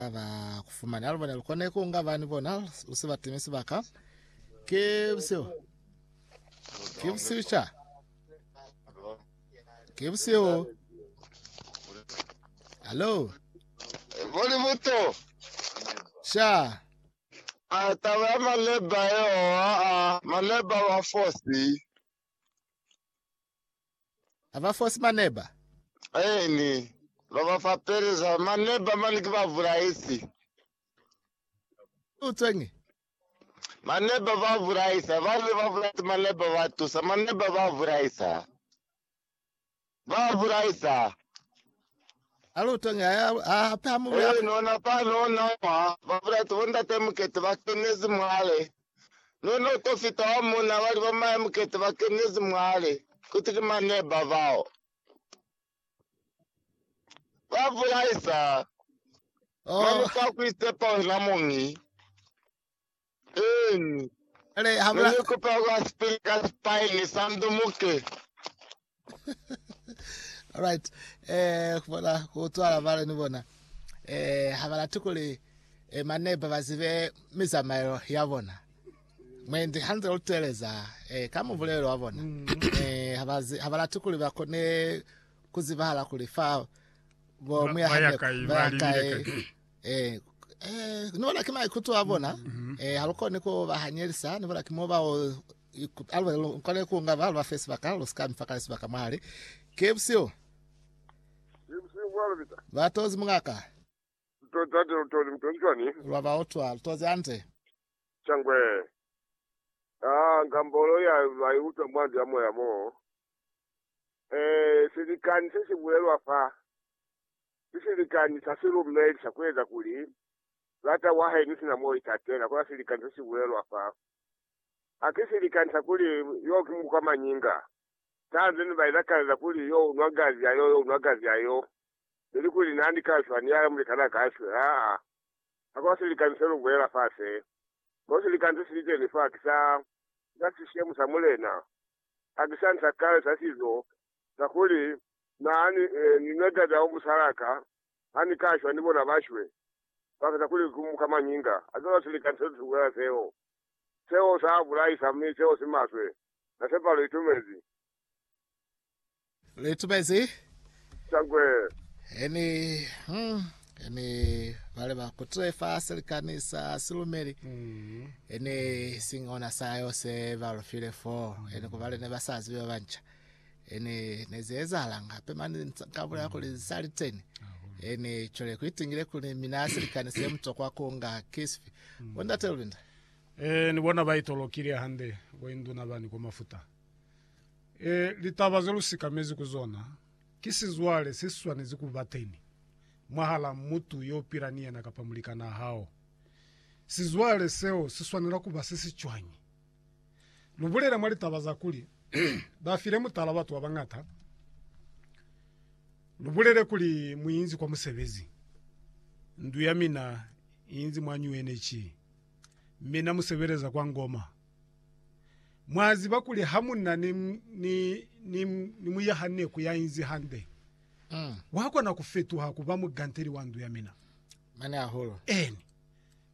ba kufumane alu bona lukone ku nga bani bona lu se batime sibaka ke busio ke busio cha ke busio hello Boli buto. sha Ah, taba ya maleba yo, ah, ah, maleba wa fosi. ha ba fosi maneba? Eeni, ba ba fapeleza maneba mane ki babulaisi. Ki utweñi? Maneba ba bulaisa. Ba ne ba bulaisa maneba ba tusa. Maneba ba bulaisa. Ba bulaisa. Ha lu utweñi, ha, ha, hape ha mu lu ya. Eeni, ona fani, ona mwa, ba bulaisa bo ndate Mukete, ba kenezi mwale. Ne no to fita wa mona bali ba mahe mukete ba kenezi mwale, kuti ki mane ba bao ba bulaisa Oh, mane fa ku isepa wena muñi. Eni, ale ha ne bula ni kupa kwa sipili ka sipaini sa ndumuke. Alright. Eh kubona kutwala vale ni bona. Eh ha bala tukuli eh maneba bazibe mizamaelo ya bona. Mwendi hanze uteleza eh ka mubulelo wa bona. Eh ha bazi ha bala tukuli ba kone kuzibahala kuli fa bo Ba- muya baya haneko, kai, baya ba libile kai. kai. Eh, eh, ni bona ki maikuto a bona. Eh, ha lu koni ku ba hanyelisa, ni bona ki mo ba o iku- a lu lu kone ku nga ba lu ba fe sibaka, lu sika mfa kale sibaka mwali. Ke busiu, Ibusiku bwa lubita. ba tozi mungaka, Mtozi tate lutozi mtozi cwani? lwa ba otwa, lu tozi ante. Changwe. Ah, ngambolo ya bai utwa mwandu ya moya mo. Eh, silikani se si bulelwa fa. Ki silikani sa silumeli sa kueza kuli lata wa hae ni sina mo itatela, kona silikani se si bulelwa fa. Ha ki silikani sa kuli yo ki muku ka mañinga, sanze ne ba ilakalela kuli yo unwa gazi ya yo, yo unwa gazi ya yo, ili kuli na ni ka shwa ni yaya mulikanaa ka shwe. Haa, hakuna silikani se lu bulela fa se. Kono silikani se sili teni fa ki sa, ki sa sishemu sa Mulena. Hakisani sa kale sa sizo kakuli Na ni, ni na tata o musala ka, ha Ni ka shwa ni bona ba shwe, ba feza kuli ku muka mañinga a zona sili ka nto tukuela seo. Seo sa bulaisa, mi seo si maswe. Na sepa lu itumezi. Lu itumezi? Shangwe. He ni, hmm, he ni bale ba kutile fa selikani sa silumeli, he ni siñi ona sa yo se ba lu file foo, he ni kubale ne ba sa zibi ba banca. Ene ne ze ezahalanga hape mane ka bulela kuli za liteni ene chole ku itingile kuli mina silikani se mutokwa ku nga kisfi bo ndate lulinda e ni bona ba itolokile hande bo induna bani ko mafuta e litaba ze lu sikamezi ku zona ki sizwale se swanezi ku ba teni mwahala mutu yo pila ni yena kapa mulikana hao sizwale seo si swanela ku ba se si cwañi Lu bulela mwa litaba za kuli ba file mutala batu ba bañata, lu bulele kuli mu inzi kwa musebezi. Ndu ya mina i inzi mwa New Energy, mi na mu sebeleza kwa Ngoma. Mwa ziba kuli ha mu na ni, ni, ni, ni muyahaneku ya inzi hande, wa kona ku fetuha ku ba muganteli wa ndu ya mina. Mane hahulu. Eni.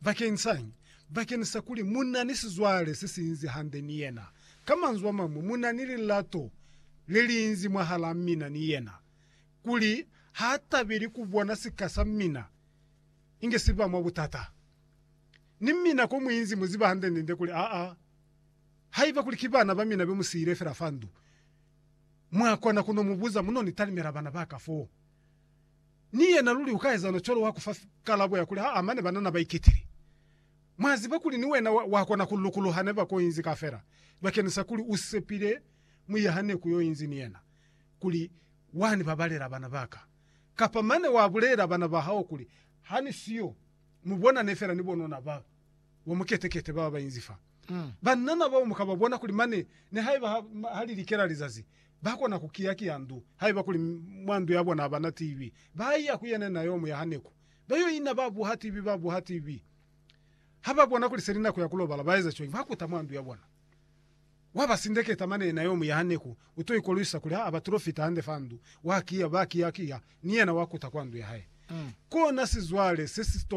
Bakensañi? Bakeni sa kuli mu na ni sizwale se si inzi hande ni yena. Ka manzwi a mañwi, mu na ni lilato le li inzi mwahalaa mina ni yena, kuli ha tabeli ku bona sika sa mina inge si ba mwa butata. Ni mina ko mu inzi mu ziba hande-nde kuli aa, haiba kuli ki bana ba mina be mu siile fela fa ndu, mwa kona ku no mu buza, mu no ni talimela bana ba ka foo. Ni yena luli ukaezana cwalo wa kufa kalabo ya kuli haa mane banana baiketile. Mwa ziba kuli ni wena wakona ku lukuluha neba ko inzi kafela bakenisa kuli u sepile muyaha neku yo inzi ni yena kuli wani babalela bana baka. Kapa mane wa bulela bana ba hao kuli hani siyo mu bona ne fela ni bonona ba wa mukete kete baba bainzi fa. Banana bao muka ba bona kuli mane nihaiba ha li likela lizazi Ba kona ku kiya-kiya ndu. Haiba kuli mwa ndu ya bona abana TV, ba iya ku yene na yo mu ya haneku. Ba yo ina ba buha TV, ba buha TV. Ha ba bona kuli seli nako ya ku lobala, ba eza cwañi? Ba kuta mwa ndu ya bona. Wa ba sindeketa mane na yo mu ya haneku. U to ikolwisa kuli ha ba tulo fita hande fa ndu, wa kiya, ba kiya-kiya, ni yena wa kuta kwa ndu ya hae. Kona sizwale se si to